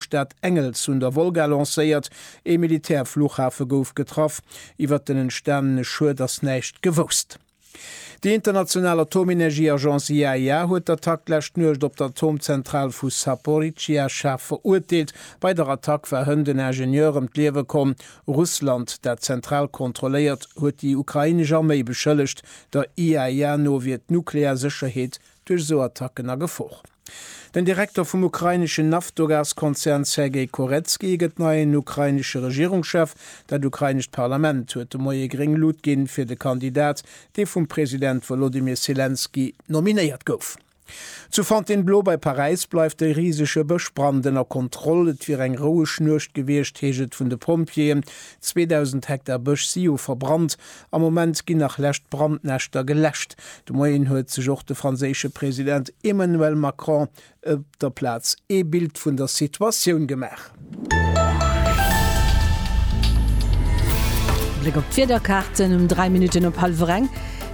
D'Stad Engels un der Wolga lancéiert, ee Militärfluchhafe gouf getraff, iwwert den entstanene Schued ass näischt gewousst. Déi international Atomenergieagence IAEA huet d'Attack d'lescht Nuecht op d'Atomzentral vu Saporizzhia schaarf verurteelt. Bei der Attack war hënt en Ingenieur ëm d'Liewe komm. Russland, dat d'Zentral kontrolléiert, huet déi ukrainesch Arméi beschëllegt. Der IAEA no wier d'nuklear Sécherheet duerch esou Attacken a Gefor. Den Direkter vum ukraineschen Naftogaz-Konzern Sergei Koretsky gëtt neien ukrainesche Regierungschef. Dat ukrainescht Parlament huet de Moie gréng Lut ginn, fir de Kandidat, dee vum President Wolodymyr Selenskyj nominéiert gouf. Zu Fontainebleau bei Paräis bleift e risege Bëschbrand ënner Kontroll. Et wier eng roueg Nuecht gewiescht, heescht et vun de Pompjeeën. 2.000 Hektar Bësch si jo verbrannt. Am Moment ginn nach lescht Brandnäschter geläscht. De Moien huet sech och de franséische President Emmanuel Macron op der Plaz ee Bild vun der Situatioun gemaach. Bléck op d'Wiederkaarten um 3 Minutten op hallwer eng.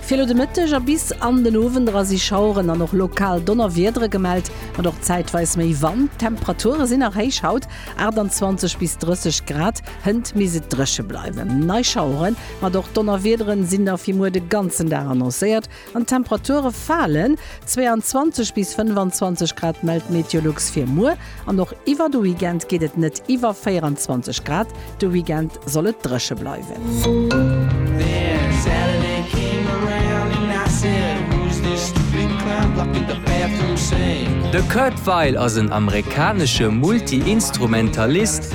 Fir elo de Mëtteg a bis an den Owend era si Schaueren an och lokal Donnerwiedere gemellt, mat och zäitweis méi Wand. D'Temperature sinn nach héich haut, 28 bis 30 Grad. Hënt misst et dréche bleiwen. Nei Schaueren, mat och Donnerwiederen sinn da fir muer de ganzen Dag annoncéiert an d'Temperature falen. 22 bis 25 Grad mellt Meteolux fir muer an och iwwer de Weekend geet et net iwwer 24 Grad. De Weekend soll et dréche bleiwen. De Kurt Weill ass en amerikanesche Multi-Instrumentalist,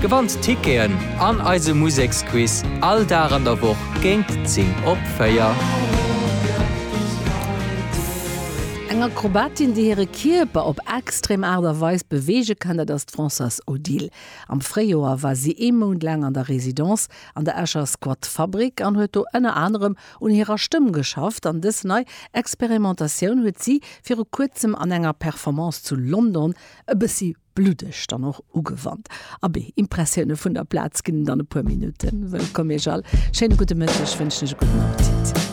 Gewannt Ticketen an eise Museksquiz all Dag an der Woch géint 10 op 4. Eng Akrobatin, déi hire Kierper op extrem Aart a Weis beweege kann, dat ass d'Françoise Odile. Am Fréijoer war si ee Mount laang an der Residence an der Escher Squat Fabrick an huet do ënner anerem un hirer Stëmm geschafft. An dës nei Experimentatioun huet si viru kuerzem an enger Performance zu London e bëssi Bluddeg dann och ugewannt. Abee, Impressioune vun der Plaz ginn dann e puer Minutten. Wëllkomm Iech all. Schéine gudde Mëtteg, wënschen ech e gudden Appetit.